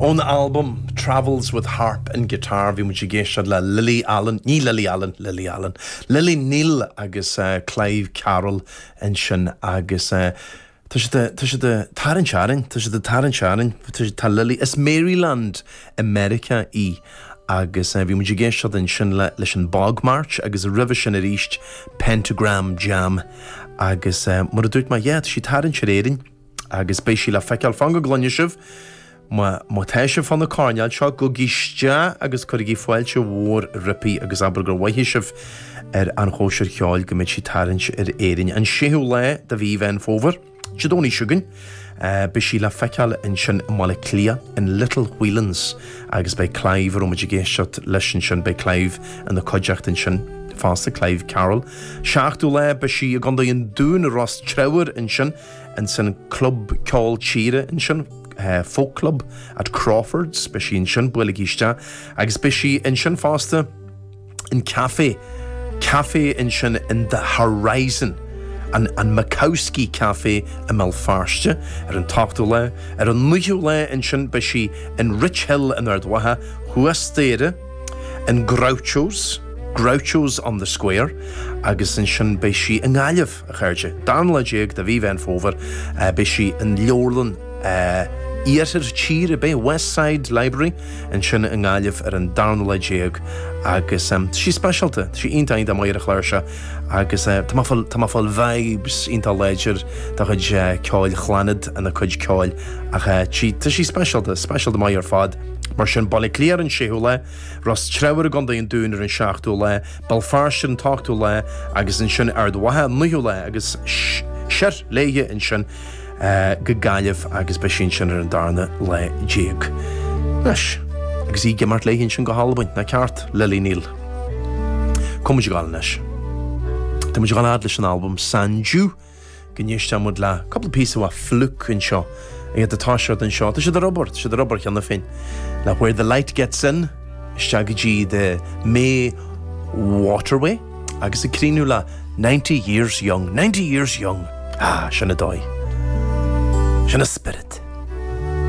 Ón albam Travels with Harp and Guitar, bhí muid ag éisteacht le Lily Allen, ní Lily Allen, Lily Allen, Lily Neill agus Clive Carroll ansin agus tá sí, tá sí ag tarraingt orainn, tá sí ag tarraingt orainn, tá Lily, as Maryland i Meiriceá í agus bhí muid ag éisteacht ansin le, leis an Bog March agus roimhe sin aríst Pentagram Jam agus mar a dúirt mé, yeah, tá sí ag tarraingt ar Éirinn. Agus beidh sí le feiceáil fan go gcluine sibh, má tá sibh fan na coirnéal seo, gabhaigí isteach agus cuirigí fáilte mhór roipí agus abair gur moithigh sibh ar An Chóisir Cheoil go mbeidh sí ag tarraingt ar Éirinn an 6ú lá de mhí Mheán Fómhair, Dé Domhnaigh chugainn. Beidh sí le feiceáil ansin i mBaile Cliath, in Little Whelan's agus beidh Clive, a raibh muid ag éisteacht leis ansin, beidh Clive ina cuideachta ansin fosta, Clive Carroll. 7ú lá beidh sí i gCondae an Dúin, i Ros Treabhair ansin. ansin club ceoil tíre ansin, folk club at Crawford's, beidh sí ansin, buailigh isteach, agus beidh sí ansin fosta in café, café ansin in the horizon, an an Makowski Café i mBéal Feirste, ar an ochtú lá, ar an naoú lá ansin beidh sí in Rich Hill in Ard Mhacha thuas d'Éire, in Groucho's, Groucho's on the Square, agus ansin beidh sí i nGaillimh. A chairde. Darna lá déag de mhí Mheán Fómhair beidh sí in Leabharlann Iarthar Tíre, beidh West Side Library ansin i nGaillimh ar an darna lá déag agus tá sí speisialta, tá sí iontach iontach maith ar an chláirseach agus tá mé ag fáil, tá mé ag fáil vibes, iontach láidir dá chuid ceoil, Chlannad ina cuid ceoil ach tá sí, tá sí speisialta, speisialta maith ar fad. Mar sin, Baile Átha Cliath ar an séú lá. Ros Treabhair i gContae an Dúin ar an seachtú lá, Béal Feirste ar an ochtú lá agus ansin Ard Mhacha an naoú lá agus siar léi ansin go Gaillimh agus beidh sí ansin ar an darna lá déag. Anois, agus í ag imeacht léi ansin go hAlbain, nach ceart, Lily Neill? Tá muid ag gabháil anois. Tá muid ag gabháil ar aghaidh leis an albam San Ju, go n-éistfidh muid le cúpla píosa maith Flook anseo a fhad is atá siad anseo. Tá siad i ndiaidh obair, tá siad i ndiaidh obair cheana féin le Where the Light Gets In isteach go dtí The May Waterway agus ag críochnú le 90 years young, 90 years young. Ah, sin an dóigh. Sin an spirit.